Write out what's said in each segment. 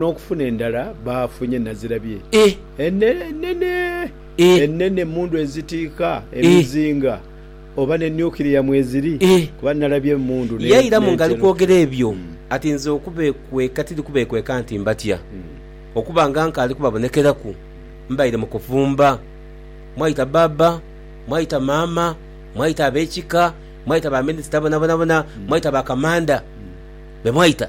N'okufuna endala baafunye nazirabye enene enene emmundu ezitiika emizinga oba ne nuclear mweziri kuba nalabye emmundu n'entera okufuna. Yairamu ng'ali kwogera ebyo ati, Nze okubeekweka tiri kubeekweka nti mbatya. Okuba nga nkaali kubabonekeraku, mbaire mu kufumba. Mwaita bbaabba, mwaita maama, mwaita ab'ekika, mwaita baminisita bonabonabona, mwaita ba kamanda be mwaita.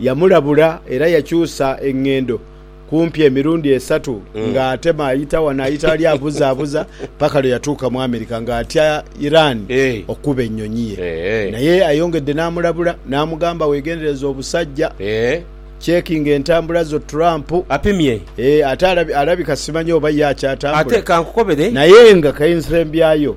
Yamulabula era yakyusa enghendo kumpi emirundi esatu nga atema ayita wano ayita wali abuzabuza paka lwe yatuuka mu America nga atya Iran okukuba ennyonyi ye naye ayongedde namulabula namugamba wegendereze obusajja checkinga entambula zo Trump ate alabika simanyi oba ye akyatambula naye nga kensembyayo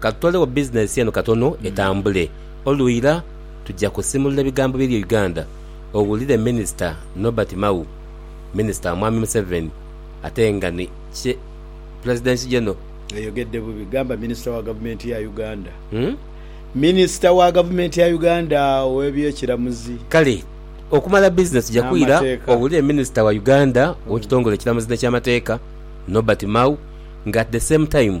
Ka tutolewo bizinensi eno katono etambule. Olwira tuja kusimulula ebigambo biri e Uganda owulire Minisita Nobert Mao, Minisita wa Mwami Museveni ate nga ni Kye Pulezidenti Geno. Oyogedde bubi. Gamba Minisita wa Gavumenti ya Uganda. Minisita wa Gavumenti ya Uganda ow'ebyekiramuzi. Kale okumala bizinensi tuja kwira owulire Minisita wa Uganda ow'ekitongole ekiramuzi n'ekyamateeka, Nobert Mao nga at the same time,